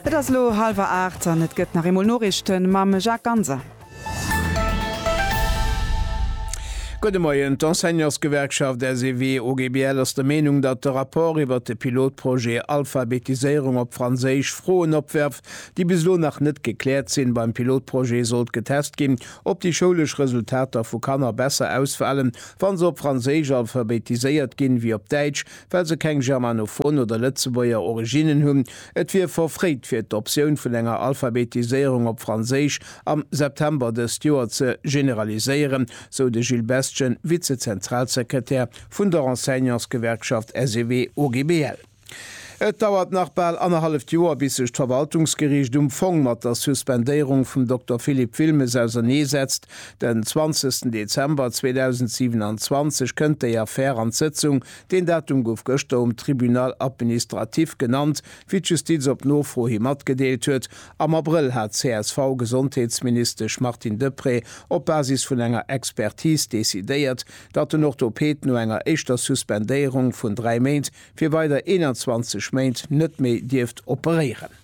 Et ass elo hallwer 8 an et gëtt nach eemol Noriichten mam Jacques Ganser. Gudde Moien. D'Enseignantsgewerkschaft SEW-OGBL ass der Meenung, datt de Rapport iwwert de Pilotprojet Alphabetiséierung op Franséisch Froen opwerft, déi bis elo nach net gekläert sinn. Beim Pilotprojet sollt getest ginn, ob déi schoulesch Resultater vu Kanner besser ausfalen, wa se op Franséisch alphabetiséiert ginn, wéi op Däitsch, well se keng germanophon oder Lëtzebuerger Originnen hunn, et wier verfréit fir d'Optioun vun enger Alphabetiséierung op Franséisch am September dëst Joer ze generaliséieren, sou de Gilles Bestgen, Vize-Zentralsekretär vun der Enseignantsgewerkschaft SEW-OGBL. Et dauert nach bal annerhalleft Joer, bis sech d'Verwaltungsgeriicht um Fong mat der Suspendéierung vum Dokter Philippe Wilmes ausernee setzt. Den 20 Dezember 2027 kënnt déi Affär an d'Sëtzung Deen Datum gouf gëschter um Tribunal administratif genannt, wéi d'Justiz op Nofro hi matgedeelt huet. Am Abrëll hat d'CSV-Gesondheetsministesch Martine Deprez op Basis vun enger Expertis decidéiert, datt den Orthoped no enger éischter Suspendéierung vun dräi Méint fir weider 21 Méint net méi dierft operéieren.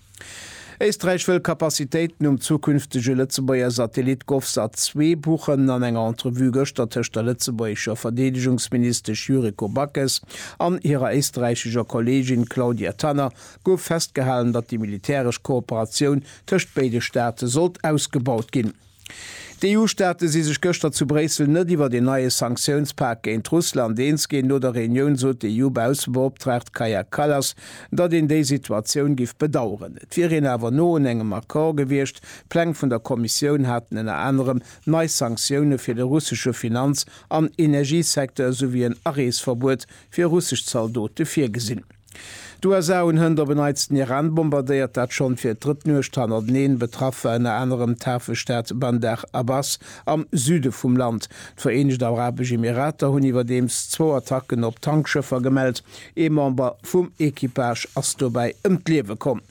Éisträich wëll Kapazitéiten um zukünftege Lëtzebuerger Satellit Govsat 2 buchen. An enger Entrevue gëschter tëscht der lëtzebuergescher Verdeedegungsministesch Yuriko Backes an hirer éisträichescher Kolleegin Claudia Tanner gouf festgehalen, datt déi militäresch Kooperatioun tëscht béide Staate sollt ausgebaut ginn. D'EU-Staate si sech gëschter zu Bréissel net iwwert een neie Sanktiounspak géint Russland eens ginn. No der Reunioun sot d'EU-Baussebeoptraagt Kaja Kallas, datt een déi Situatioun giff bedaueren. Et wier een awer no un engem Accord gewiescht. D'Pläng vun der Kommissioun haten ënner anerem nei Sanktioune fir de russesche Finanz an Energiesecteur esouwéi en Areesverbuet fir russesch Zaldote virgesinn. D'USA hunn hënt op en Neits den Iran bombardéiert, dat schonn fir d'drëtt Nuecht hannerteneen. Betraff war ënner anerem d'Hafestad Bandar Abbas am Süde vum Land. D'Vereenegt Arabesch Emirater hunn iwwerdeems zwou Attacken op Tankschëffer gemellt. Ee Member vum Equipage ass dobäi ëm d'Liewe komm.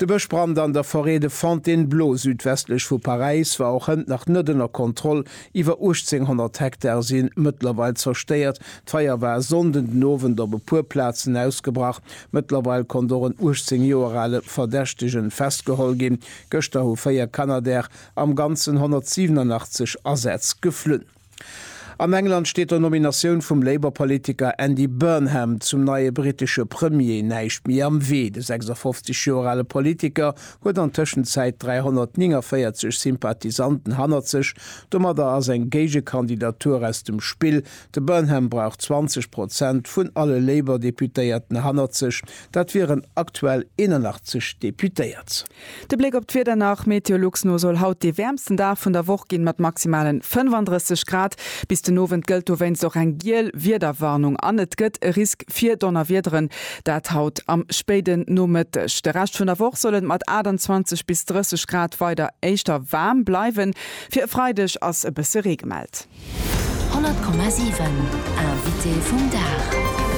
De Bëschbrand an der Forêt de Fontainebleau südwestlech vu Paräis war och hënt nach net ënner Kontroll. Iwwer 1800 Hektare si mëttlerweil zerstéiert. D'Feier war e Sonnden den Owend op e puer Plazen ausgebrach. Mëttlerweil konnt och en 18 Joer ale Verdächtege festgeholl ginn. Gëschter hu véier Canadair am Ganzen 187 Asätz geflunn. An England steet der Nominatioun vum Labour-Politiker Andy Burnham zum neie brittesche Premier näischt méi am Wee. De 56 Joer ale Politiker huet an Tëschenzäit 349 Sympathisanten hannert sech. Domadder ass eng Géigekandidatur aus dem Spill. De Burnham brauch 20 Prozent vun alle Labour-Deputéierten hannert sech, dat wieren aktuell 81 Deputéiert. De Bléck op d'Wieder nach, Meteolux no soll haut dee wäermsten Dag vun der Woch ginn, mat maximale 35 Grad. Bis den Owend gëllt dowéinst och eng giel Wiederwarnung an et gëtt e Risk fir Donnerwiederen, dat haut am spéiden Nomëtteg. De Rescht vun der Woch soll et mat 28 bis 30 Grad weider éischter waarm bleiwen. Fir e Freideg ass e bësse Ree gemellt. 100,7 Invité vum Dag.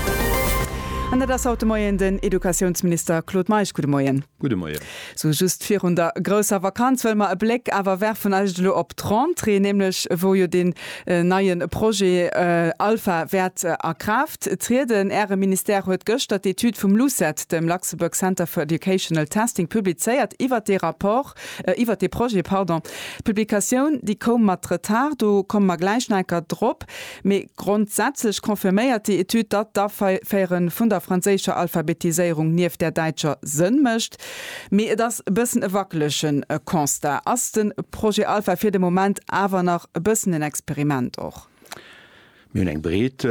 An dat ass haut de Moien den Educatiounsminister Claude Meisch. Gudde Moien. Gudde Moien. Sou just virun der grousser Vakanz wëlle mer e Bléck awer werfen eischt elo op d'Rentrée, nämlech wou jo deen neie Projet ALPHA wäert a Kraaft trieden. Äre Ministère huet gëschter d'Etüd vum LUCET, dem Luxembourg Center for Educational Testing, publizéiert iwwert dee Rapport. Iwwert dee Projet, pardon. D'Publikatioun, déi koum mat Retard, do komme mer gläich nach enker drop. Mee grondsätzlech confirméiert déi Etüd, datt d'Aféiere vun der franséischer Alphabetiséierung nieft där däitscher Sënn mécht. Mee et ass e bëssen e wackelege Constat. Ass de Projet Alpha fir de Moment awer nach e bëssen en Experiment och? Mir hunn eng breet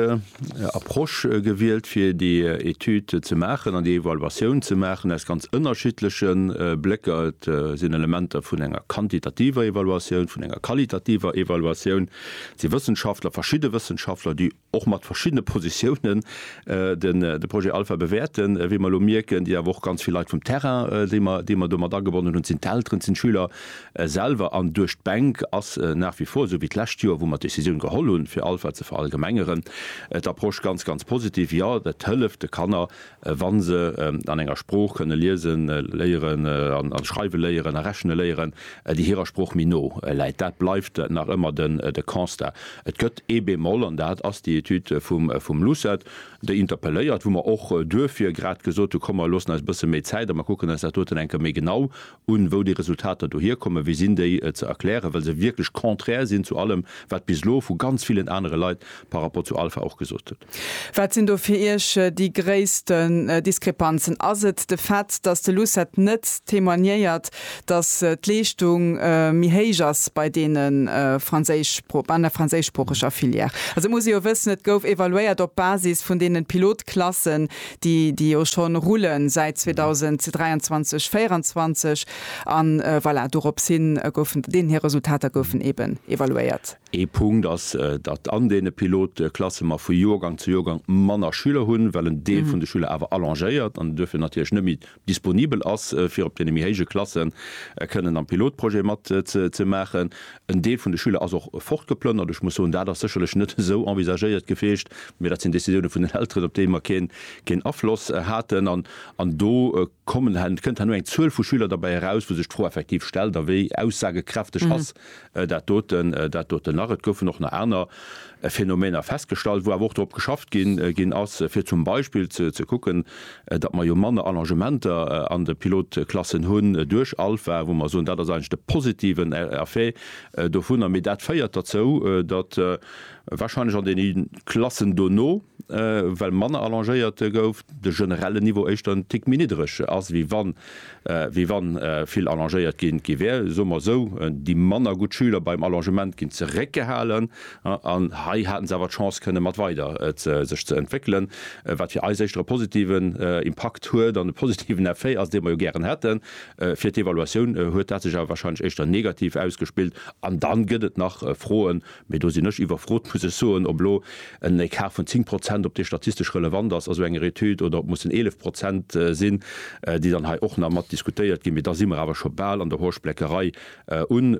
Approche gewielt, fir déi Etüd ze maachen an déi Evaluatioun ze maachen, aus ganz ënnerschiddleche Blécker. Et sinn Elementer vun enger quantitativer Evaluatioun, vun enger qualitativer Evaluatioun. Et si Wëssenschaftler, verschidde Wëssenschaftler, déi och mat verschiddene Positiounen de Projet Alpha bewäerten, wéi mer elo mierken, déi awer och ganz vill Leit vum Terrain, déi mer domat agebonnen hunn. Et sinn d'Elteren, et sinn d'Schüler, selwer an duerch d'Bänk ass nach wie vor, esou wéi d'lescht Joer, wou mer d'Decisioun geholl hunn, fir Alpha ze verallgemengeren, d'Approche ganz, ganz positiv. Jo, et hëlleft de Kanner, wa se an enger Sprooch kënne liese léieren a schreiwe léieren a rechne léieren, déi hirer Sprooch méi no läit. Dat bleift nach ëmmer de Constat. Et gëtt ee Bémol, an dat ass déi Etüd vum LUCET, déi interpelléiert, wou mer och duerfir grad gesot hu, komm mer loossen eis e bësse méi Zäit a mer kucken eis dat doten eng Kéier méi genau un, wou déi Resultater dohier kommen, wéi sinn déi ze erklären, well se wierklech contraire sinn zu allem, wat bis elo vu ganz villen anere Leit par rapport zu Alpha och gesot gëtt. Wat sinn do fir Iech déi gréissten Diskrepanzen? Ass et de Fait, datt de Lucet net témoignéiert, datt d'Leeschtung méi héich ass bei deene franséischspro-, an der franséischsproocheger Filière? Also et muss ee jo wëssen, et gouf evaluéiert op Basis vun deene Pilotklassen, déi déi jo scho rullen säit 2023, 24 an voilà, dorops hin goufen deen hir Resultater goufen eben evaluéiert. Ee Punkt ass, datt an deene Pilotklasse mer vu Joergang zu Joergang manner Schüler hunn, well en Deel vun de Schüler awer allongéiert an duerfir natierlech net méi disponibel ass fir op deene méi héije Klasse kënnen am Pilotprojet mat ze maachen. En Deel vun de Schüler ass och fortgeplënnert. Ech muss soen, dat ass sécherlech net esou envisagéiert gewiescht, mä dat sinn Décisiounen vun den Elteren, op déi mer keen Afloss haten. An do kommen, kënnt herno eng Zuel vu Schüler derbäi eraus, wou sech d'Fro effektiv stellt, a wéi aussagekräfteg ass dat doten, dat doten nach. Et goufen och nach aner Phänomener festgestallt, wou awer och drop geschafft gi ginn ass, fir zum Beispill ze ze kucken, datt mer jo manner Allongementer an de Pilotklassen hunn duerch Alpha, wou mer soen, dat ass eigentlech de positiven E Effet dovunner. Mee dat féiert derzou, datt wahrscheinlech an deene Klassen dono, well manner allongéiert gouf, de generellen Niveau éischter en Tick méi niddreg ass, wéi wann. wéi wann vill allongéiert gi gi wär. Soe mer esou, déi manner gutt Schüler beim Allongement ginn zeréckgehalen an hei haten se awer d'Chance kënne mat weider sech ze entwéckelen, wat fir eis éischter e positiven Impakt huet an e positiven Effet ass, dee mer jo gären hätten. Fir d'Evaluatioun huet dat sech awer wahrscheinlech éischter negativ ausgespillt an dann gëtt et nach Froen Mee do sinn ech iwwerfrot, muss ech soen, ob elo en Ecart vun 10 Prozent, ob dee statistesch relevant ass a sou enger Etüd oder ob mussen 11 Prozent sinn, déi dann hei och nach mat diskutéiert ginn. Mee da si mer awer scho bal an der Horschbleckerei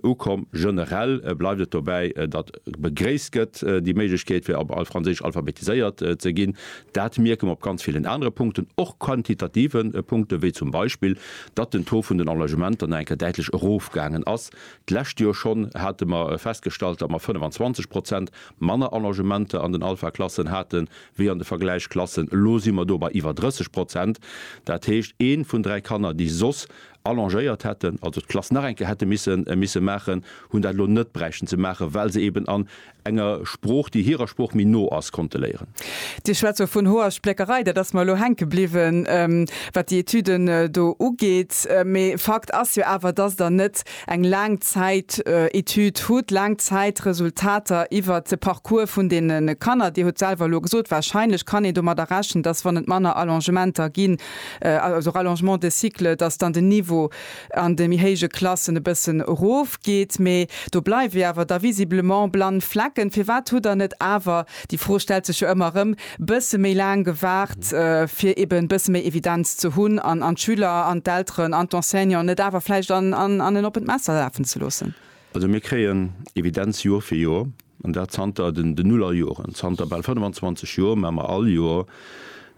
ukomm. Generell bleift et dobäi, datt begréisst gëtt, déi Méiglechkeet fir op franséisch alphabetiséiert ze ginn. Dat mierke mer op ganz villen anere Punkten, och quantitative Punkten, wéi zum Beispill, datt den Taux vun den Enlègementer nach eng Kéier däitlech erofgaangen ass. D'lescht Joer schonn hate mer festgestallt, datt mer 25 Prozent manner Allogementer an den Alpha-Klassen hate wéi an de Vergläichsklassen. Elo si mer do bei iwwer 30 Prozent. Dat heescht, ee vun dräi Kanner, déi soss allongéiert hätten, also d'Klass nach eng Kéier hätte misse maachen, hunn dat elo net bräichten ze maachen, well se eeben an enger Sprooch, déi hirer Sprooch méi no ass, konnte léieren. Dir schwätzt do vun hoer Spléckerei, dat ass mer elo hänke bliwwen, wat déi Etüden do ugeet. Mee Fakt ass jo awer, dass Der net eng Laangzäitetüd hutt, Laangzäitresultater iwwert de Parcours vun deene Kanner. Dir hutt selwer elo gesot, wahrscheinlech kann een domadder rechnen, dass, wann et manner Allongementer ginn, also Rallongement de cycle, dass dann den Niveau an de méi héije Klassen e bëssen erofgeet, mee do bleiwe awer da visiblement blann Flecken. Firwat hutt Der net awer, déi Fro stellt sech jo ëmmer erëm, bësse méi laang gewaart, fir eben bësse méi Evidenz ze hunn an an d'Schüler an d'Elteren an d'Enseignanten net awer vläicht an an en oppent Messer lafen ze loossen? Also mir kréien Evidenz Joer fir Joer. An dat zanter den Nullerjoren. Zanter bal 25 Joer maache mer all Joer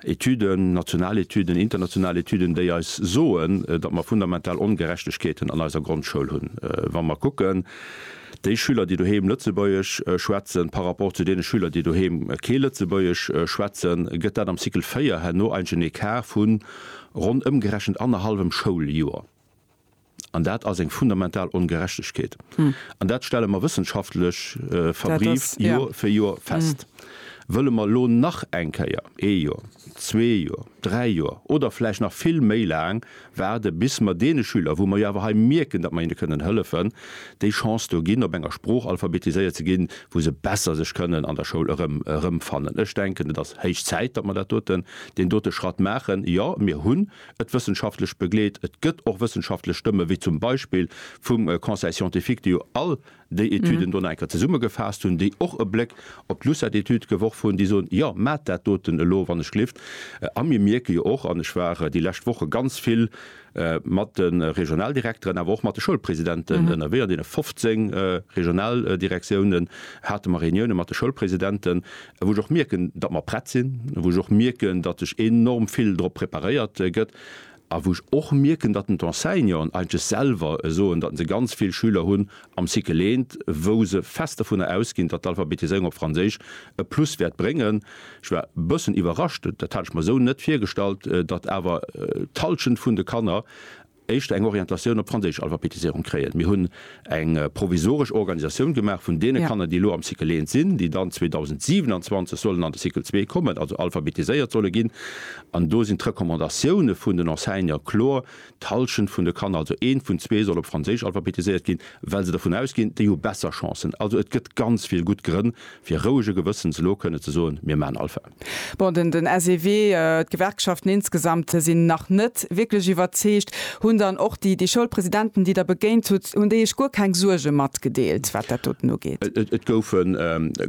Etüden, national Etüden, international Etüden, déi eis soen, datt mer fundamental Ongerechtegkeeten an eiser Grondschoul hunn. Wa mer kucken, déi Schüler, déi doheem Lëtzebuergesch schwätzen, par rapport zu deene Schüler, déi doheem kee Lëtzebuergesch schwätzen, gëtt dat am Cycle 4 herno eigentlech en Ecart vu ronn ëmgerechent annerhallwem Schouljoer. An dat ass eng fundamental Ongerechtegkeet. An dat stelle mer wëssenschaftlech verbrieft Joer fir Joer fest. Wëlle mer elo nach eng Kéier ee Joer, zwee Joer, dräi Joer oder vläicht nach vill méi laang waarden, bis mer deene Schüler, wou mer jo awer hei mierken, datt mer hinne kënnen hëllefen, déi Chance do ginn, op enger Sprooch alphabetiséiert ze ginn, wou se besser sech kënnen an der Schoul erëmfannen? Ech denken, et ass héich Zäit, datt mer dat doten, deen dote Schratt maachen. Jo, mir hunn et wëssenschaftlech begleet, et gëtt och wëssenschaftlech Stëmme wéi zum Beispill vum Conseil scientifique, déi jo all déi Etüden do nach eng Kéier zesummegefaasst hunn, déi och e Bléck op d'Lucet-Etüd geworf hunn, déi soen, jo maacht dat doten elo wannechgelift. A mir mierke jo och, an ech war déi lescht Woche ganz vill mat de Regionaldirekteren, awer och mat de Schoulpresidenten ënnerwee, an deene 15 Regionaldirektiounen hate mer Reuniounen mat de Schoulpresidenten, wou ech och mierken, datt mer prett sinn, wou ech och mierken, datt sech enorm vill drop preparéiert gëtt a wou ech och mierken, datt d'Enseignanten eigentlech selwer soen, datt se ganz vill Schüler hunn am Cycle I, wou se fest dovunner ausginn, datt d'Alphabetiséierung op Franséisch e Plus wäert bréngen. Ech war e bëssen iwwerrascht, dat hat ech mer esou net virgestallt, datt awer d'Hallschent vun de Kanner éischter eng Orientatioun op d'franséisch Alphabetisierung kréien. Mir hunn eng provisoresch Organisatioun gemaach vun deene Kanner, déi elo am Cycle 1 sinn, déi dann 2027 sollen an de Cycle 2 kommen, also alphabetiséiert solle ginn. An do sinn d'Recommandatioune vun den Enseignante kloer, D'Hallschent vun de Kanner, also eent vun zwee, soll op franséisch alphabetiséiert ginn, well se dervun ausginn, déi hu besser Chancen. Also et gëtt ganz vill gutt Grënn, fir rouege Gewëssens elo kënne ze soen, Mir maachen Alpha. Bon, den den SEW, d'Gewerkschaften insgesamt sinn nach net wierklech iwwerzeegt. Hunn dann och déi déi Schoulpresidenten, déi Der begéint hutt, hunn déi Iech guer keng Suerge matgedeelt, wat dat doten ugeet? Et goufe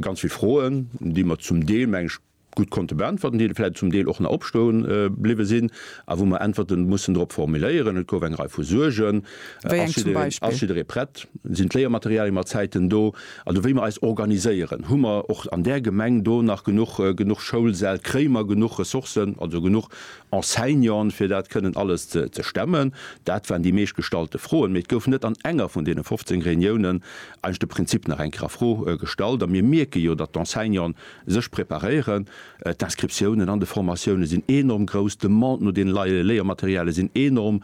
ganz vill Froen, déi mer zum Deel, meng ech, gutt konnte beäntwerten, déi vläicht zum Deel och nach opstoe bliwwe sinn a wou mer Äntwerte mussen drop formuléieren. Et gouf eng Rei vu Suergen. Wéi eng zum Beispill? Ass jidderee prett? Sinn d'Léiermaterialie mat Zäiten do? Also wéi mer eis organiséieren, hu mer och an där Gemeng do nach genuch, genuch Schoulsäll, kréie mer genuch Ressourcen, also genuch Enseignanten, fir dat kënnen alles ze, ze stemmen? Dat waren déi meeschtgestallte Froen. Mee et gouf net an enger vun deene 15 Reuniounen eigentlech de Prinzip nach eng Kéier a Fro gestallt. A mir mierke jo, datt d'Enseignanten sech preparéieren. D'Inscriptiounen an de Formatiounen sinn enorm grouss, d'Demande no deene Léiermaterialie sinn enorm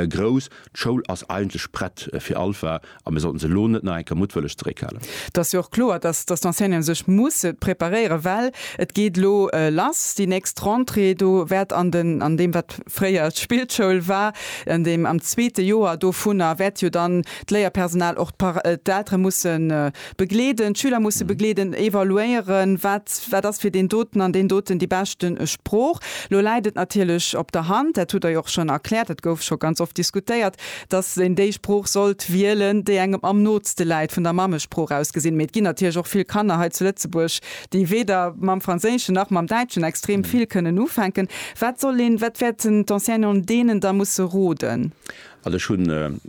grouss. D'Schoul ass eigentlech prett fir Alpha. A mir sollten se elo net nach eng Kéier muttwëlleg zeréckhalen. Et ass jo och kloer, dass d'Enseignanten sech musse preparéieren, well et geet elo lass, déi nächst Rentrée. Do wäert an den, an deem wat fréier d'Spillschoul war, an deem am zweete Joer dovunner, wäert jo dann d'Léierpersonal, och d'Eltere mussen, Begleeden, d'Schüler musse begleeden, evaluéieren, wat wat ass fir deen doten an deen doten déi beschte Sprooch. Lo läit et natierlech op der Hand, dat hutt Der jo och schonn erkläert, dat gouf scho ganz oft diskutéiert, dass een déi Sprooch sollt wielen, déi engem am nootste läit vun der Mammesprooch aus gesinn. Mee et ginn natierlech och vill Kanner hei zu Lëtzebuerg, déi weder mam Franséischen nach mam Däitschen extrem vill kënnen ufänken. Wat soll een, wat wäerten d'Enseignanten deenen da musse roden? Also ech hunn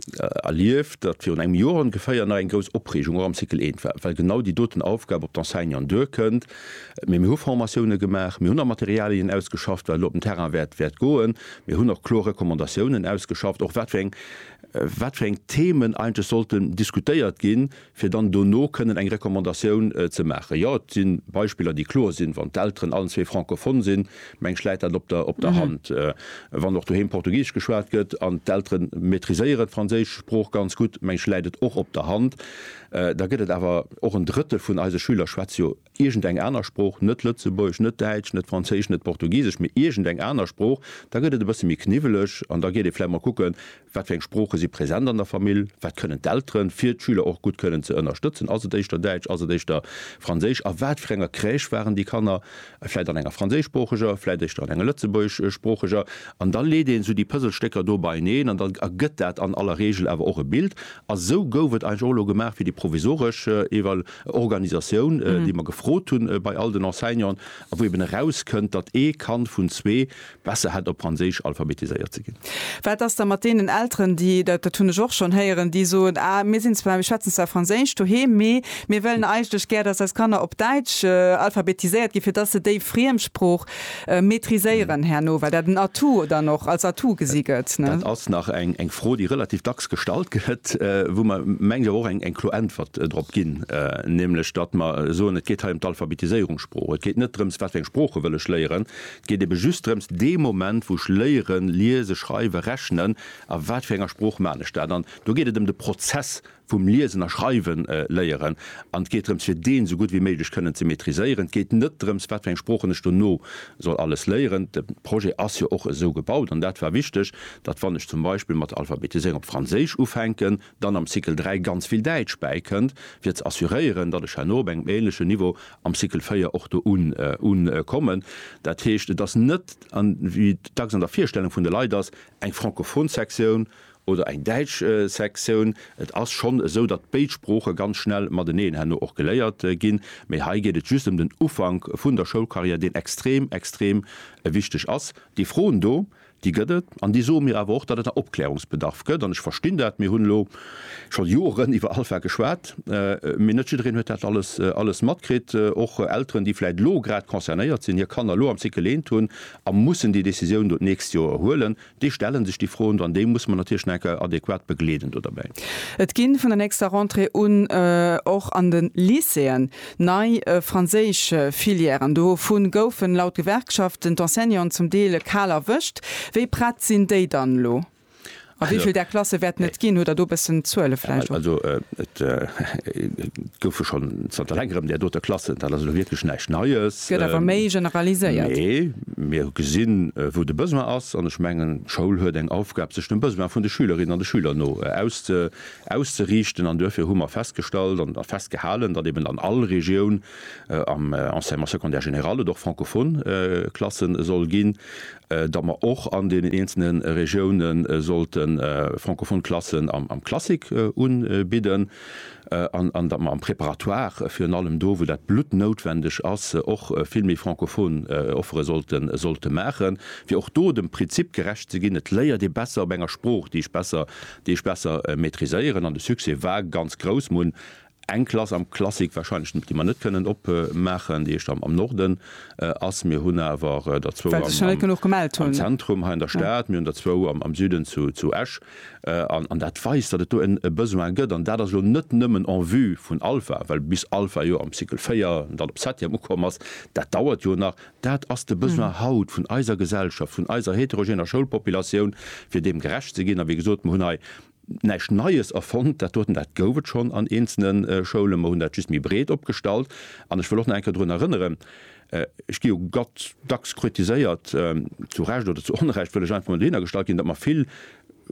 erlieft, datt virun engem Joer ongeféier nach eng grouss Opreegung och am Cycle eent war, well genau déi doten Aufgab op d'Enseignanten duerkënnt. Mee mir hu Formatioune gemaach, mir hunn nach Materialien ausgeschafft, wat elo op den Terrain wäert goen. Mir hunn och kloer Recommandatiounen ausgeschafft, och wat fir eng wat fir eng Themen eigentlech sollten diskutéiert ginn, fir dann dono kënnen eng Recommandatioun ze maachen. Jo, et si Beispiller, déi kloer sinn, wann d'Elteren allen zwee francophone sinn, meng ech, läit dat op der op der Hand. Wann och doheem Portugisesch geschwat gëtt an d'Eltere maîtriséieren d'franséisch Sprooch ganz gutt, meng ech, läit et och op der Hand. Da gëtt et awer och en Drëttel vun eise Schüler schwätzt jo iergend eng aner Sprooch, net Lëtzebuergesch, net Däitsch, net Franséisch, net Portugisesch, mee iergend eng aner Sprooch, da gëtt et e bësse méi kniwweleg an da geet ee vläicht mol kucken, wat fir eng Sprooche si present an der Famill, wat kënnen d'Elteren, fir d'Schüler och gutt kënnen ze ënnerstëtzen. Ass et éischter Däitsch, ass et éischter Franséisch, a wat fir enger Crèche waren déi Kanner, vläicht an enger franséischsproocheger, vläicht éischter an enger lëtzebuergeschsproocheger? An da leet een esou déi Pëselstécker do beieneen an da ergëtt dat an aller Reegel awer och e Bild. A sou gouf et eigentlech och elo gemaach fir déi provisoresch Evaluatioun. Organisatioun, déi mer gefrot hunn bei all den Enseignanten, a wou eben erauskënnt, datt ee Kand vun zwee besser hätt op Franséisch alphabetiséiert ze ginn. Wat ass da mat deenen Elteren, déi, dat hunn ech och schonn héieren, déi soen, ah mir sinn zwar, mir schwätzen zwar Franséisch doheem, mee mir wëllen eigentlech gär, datt eis Kanner op Däitsch alphabetiséiert ginn, fir datt se déi Friemsprooch Maîtriséieren herno, well dat en Atout dann och als Atout gesi gëtt. Dat ass nach eng Fro, déi relativ dacks gestallt gëtt, wou mer, mengen ech, awer och eng kloer Äntwert drop ginn, nämlech datt mer soen, et geet hei ëm d'Alphabetiséierung Sprooch. Et geet net drëms, wat fir eng Sprooche wëll ech léieren, et geet ebe just drëms, dee Moment, wou ech léieren, liesen, schreiwen, rechnen, a wat fir enger Sprooch man ech dat. An do geet et ëm de Prozess vum Liesen a Schreiwen léieren an et geet drëms fir deen esou gutt wéi méiglech kënnen ze maîtriséieren. Et geet net drëms wat fir eng Sproochen ech dono soll alles léieren. De Projet ass jo och esou gebaut an dat war wichteg, datt wann ech zum Beispill mat der Alphabetiséierung op Franséisch ufänken, dann am Cycle 3 ganz vill Däitsch bäikënnt fir ze assuréieren, datt ech herno op engem ähnlechen Niveau am Cycle 4 och do ukommen. Dat heescht et ass net, wéi et dacks an der Virstellung vun de Leit ass, eng francophon Sektioun oder eng däitsch Sektioun. Et ass schonn esou, datt béid Sprooche ganz schnell mateneen herno och geléiert ginn, mee hei geet et just ëm den Ufank vun der Schoulcarrière, deen extrem, extrem wichteg ass. Déi Froen do, déi gëtt et an déi soe mir awer och, datt et nach Opklärungsbedarf gëtt. An ech verstinn dat, mir hunn elo scho Joren iwwer ALPHA geschwat, mee net jiddereen huet dat alles, alles matkritt. Och Elteren, déi vläicht elo grad concernéiert sinn, hir Kanner elo am Cycle eent hunn a mussen déi Décisioun do d'nächst Joer huelen, Déi stellen sech déi Froen, an déi muss mer natierlech nach enker adäquat begleeden do derbäi. Et ginn vun der nächster Rentrée un och an de Lycéeën nei franséisch Filièren. Dovu goufen laut Gewerkschaften d'Enseignanten zum Deel kal erwëscht. Wéi prett sinn déi dann elo? A wéi vill där Klasse wäerten et ginn? Hutt Der do e bëssen Zuele vläicht och? Also et goufe schonn zanter längerem där dote Klassen. Dat ass elo wierklech näischt Neies. gëtt awer méi generaliséiert. Nee, mir hu gesinn, wou de Besoin ass. An ech mengen, d'Schoul huet eng Aufgab, sech dem Besoin vun de Schülerinnen an de Schüler no auszeriichten. An duerfir hu mer festgestallt a festgehalen, datt eben an all Regioun am Enseignement secondaire général et och francophone Klassen soll ginn. datt mer och an deenen eenzelne Regioune sollte francophone Klassen am Classique unbidden an datt mer am Préparatoire virun allem do, wou dat bluttnoutwendeg ass, och vill méi francophone Offere sollte maachen, fir och do dem Prinzip gerecht ze ginn, et léiert ee besser op enger Sprooch, déi ech besser, déi ech besser maîtriséieren. An de Succès war ganz grouss. Mer hunn Eng Klass am Classic wahrscheinlech, déi mer net kënnen opmaachen, déi éischt am Norden ass. Mir hunn awer der zwou am Zentrum hei an der Stad, mir hunn der zwou am Süden zu Esch. An dat weist, datt et do e Besoin gëtt. An dat ass elo net nëmmen en vue vun Alpha, well bis Alpha jo am Cycle 4 an dann op Septième ukomm ass, dat dauert jo nach. Dat ass de Besoin haut vun eiser Gesellschaft, vun eiser heterogener Schoulpopulatioun, fir deem gerecht ze ginn. A wéi gesot, mer hunn hei näischt Neies erfonnt, dat doten, dat gouf et schonn an eenzelne Schoulen, mer hunn dat just méi breet opgestallt. An ech wëll och nach eng Kéier drun erënneren, ech gi jo dacks kritiséiert, zu Recht oder zu Onrecht, wëll ech einfach emol dohinner gestallt ginn, datt mer vill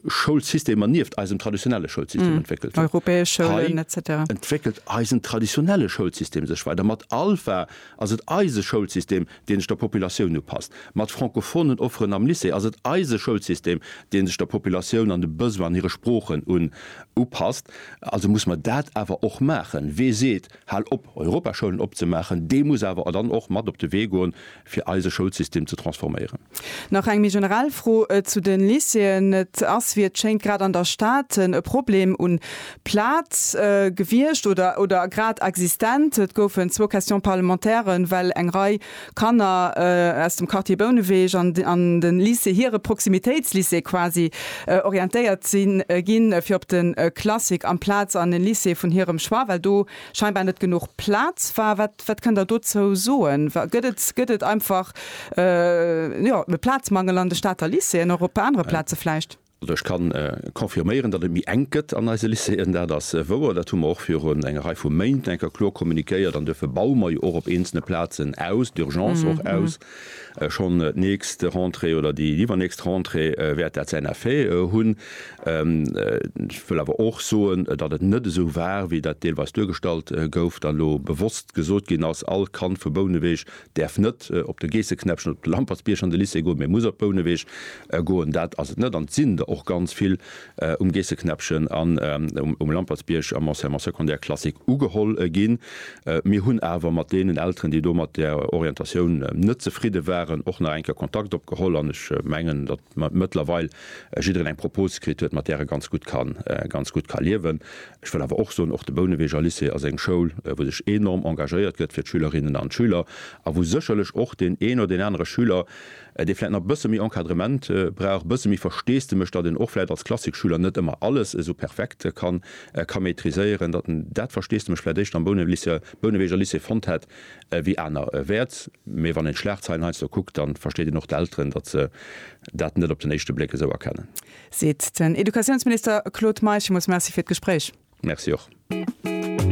Schoulsystemer nieft eisem traditionelle Schoulsystem entwéckelt hunn. Europäesch Schoulen, etc. Hei entwéckelt eisen traditionelle Schoulsystem sech weider. Mat Alpha ass et eise Schoulsystem, deen sech der Populatioun upasst. Mat francophonen Offeren am Lycée ass et eise Schoulsystem, deen sech der Populatioun an de Besoin an hire Sproochen un upasst. Also muss mer dat awer och maachen. Wee seet, Hal op, Europaschoulen opzemaachen, dee muss awer dann och mat op de Wee goen, fir eise Schoulsystem ze transforméieren. Nach eng méi generell Fro zu de Lycéeën. Et ass, wéi et schéngt, grad an der Stad e Problem un Plaz gewiescht oder oder grad existent. Et goufen zwou Questions parlementairen, well eng Rei Kanner aus dem Quartier Bouneweg an an de Lycée, hire Proximitéitslycée quasi, orientéiert sinn ginn, fir op de Classic amplaz an e Lycée vun hirem Choix, well do scheinbar net genuch Plaz war. Wat Wat kënnt Der dozou soen? Gëtt et einfach e Plazmangel an de Stater Lycéeën, och op anere Plaze vläicht? Also ech ka confirméieren, datt et méi enk gëtt an eise Lycéeën, dat ass wouer. Dat hu mer och virun enger Rei vu Méint enker kloer communiquéiert an duerfir baue mer jo och op eenzele Plazen aus, d'Urgence och aus. Schonn d'nächst Rentrée oder déi iwwernächst Rentrée wäert dat säin Effet hunn. Ech wëll awer och soen, datt et net esou war, wéi dat deelweis duergestallt gouf, datt elo bewosst gesot ginn ass, all Kand vu Bouneweg däerf net op de Geesseknäppchen oder op de Lampertsbierg an de Lycée goen, mee muss op Bouneweg goen. Dat ass et net an et sinn der och ganz vill, um Geesseknäppchen an um Lampertsbierg am Enseignement secondaire classique ugeholl ginn. Mir hunn awer mat deenen Elteren, déi do mat där Orientatioun net zefridde waren, och nach eng Kéier Kontakt opgeholl an ech mengen, datt mëttlerweil jiddereen eng Propose kritt huet, mat där e ganz gutt kann, ganz gutt ka liewen. Ech wëll awer och soen, och de Bouneweger Lycée ass eng Schoul, wou sech enorm engagéiert gëtt fir d'Schülerinnen an d'Schüler a wou sécherlech och deen een oder deen anere Schüler, dee vläit nach bësse méi Encadrement brauch, bësse méi Versteesdemech, datt en och vläit als Klassikschüler net ëmmer alles esou perfekt kann ka maîtriséieren, datt en dat Versteesdemech vläit éischter am Bouneweg Bouneweger Lycée fonnt hätt wéi aner Wäert. Mee wann een d'Schlagzeilen heiansdo kuckt, da versteet een och d'Elteren, datt se dat net op den éischte Bléck esou erkennen. Seet den Educatiounsminister Claude Meisch. Villmools Merci fir d'Gespréich. Merci och.